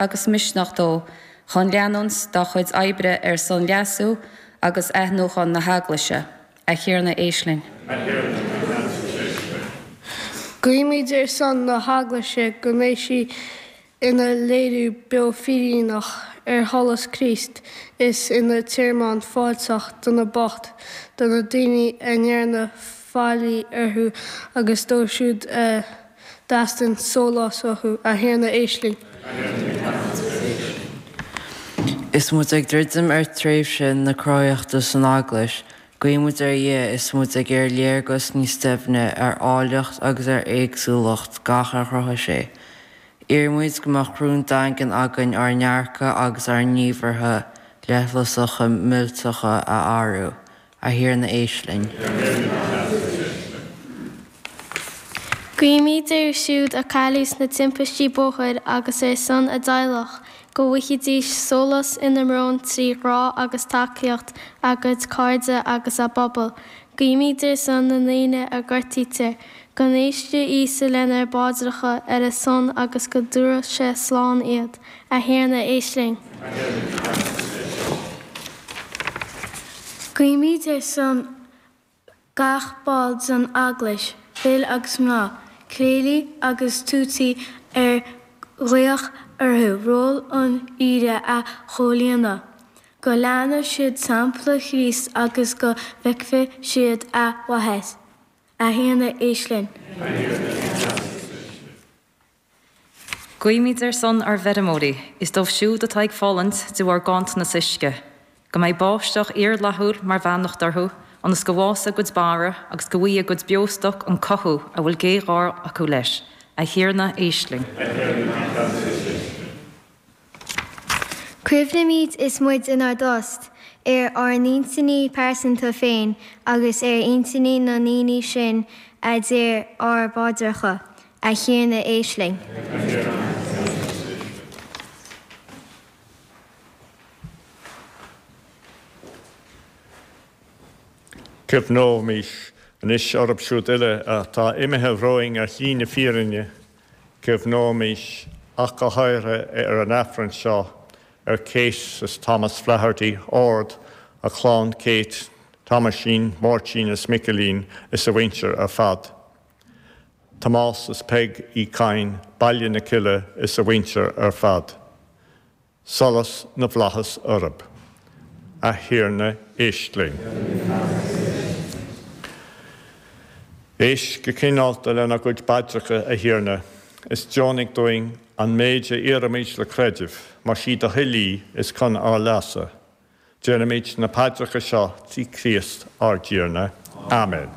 agus misneach dó chun leanúint dá chuid oibre ar son leasú agus athnuachan na hEaglaise. A Thiarna, éist linn. A Thiarna, bí ceansa agus éist linn. Guímid ar son na hEaglaise go mbeidh sí ina léiriú beo fírinneach ar sholas Chríost is ina tearmann fáilteach do na boicht, do na daoine a ndearnadh faillí orthu agus dóibh siúd a. dteastaíonn sólás uathu, a Thiarna éist linn. Is muid ag druidim ar tréimhse na cruthaitheachta san Eaglais, guímid ar Dhia is muid ag iarraidh léargas níos doimhne ar áilleacht agus ar éagsúlacht gach ar chruthaigh sé. Iarraimid go mbeadh rún daingean againn ár ndearcadh agus ár ngníomhartha leithleasacha millteacha a athrú, A Thiarna éist linn. Guímid air siúd a cailleadh sna timpistí bóthair agus ar son a dteaghlach, go bhfaighidís sólás ina mbrón trí ghrá agus tacaíocht a gcuid cairde agus a bpobal. Guímid ar son na ndaoine a ghortaítear, go n-éistfeadh Íosa lenár bpaidreacha ar a son agus go dtabharfadh sé slán iad. A Thiarna, éist linn. Guímid ar son gach ball den Eaglais, fir agus mná, cléirigh agus tuataí ar glaodh orthu ról an aoire a chomhlíonadh, go leanfadh siad sampla Chríost agus go bhfeicfeadh siad a mhaitheas. A Thiarna, éist linn. A Thiarna, éist linn. Guímid ar son ár bhfeirmeoirí is dóibh siúd atá ag fulaingt de bharr ganntanas uisce, go mbeidh báisteach fhíorfhlaithiúil mar bheannacht orthu ionas go bhfása a gcuid barra agus go bhfaighe a gcuid beostoc an cothú a bhfuil géarghá acu leis. A Thiarna, éist linn. A Thiarna, éist linn. Cuimhnímid is muid inár dtost ar ár n-intinní pearsanta féin agus ar intinní na ndaoine sin a d'iarr ár bpaidreacha, 'A Thiarna éist linn. Cuimhneoimis anois orthu siúd uile atá imithe romhainn ar shlí na fírinne. Cuimhneoimis ach go háirithe ar an Aifreann seo ar Kate is Thomas Flaherty, Ard, a chlann Kate, Tomáisín, Máirtín is Micilín is a mhuintir ar fad. Tomás is Peig Uí Chadhain, Baile na Cille is a mhuintir ar fad. Solas na bhFlaitheas orthu. A Thiarna éist linn. Éist go cineálta lenár gcuid bpaidreacha, a Thiarna, is deonaigh dúinn an méid a iarraimid le creideamh, mar is í do thoil í is cun ár leasa. Déanaimid na paidreacha seo trí Chríost ár dTiarna. Amen.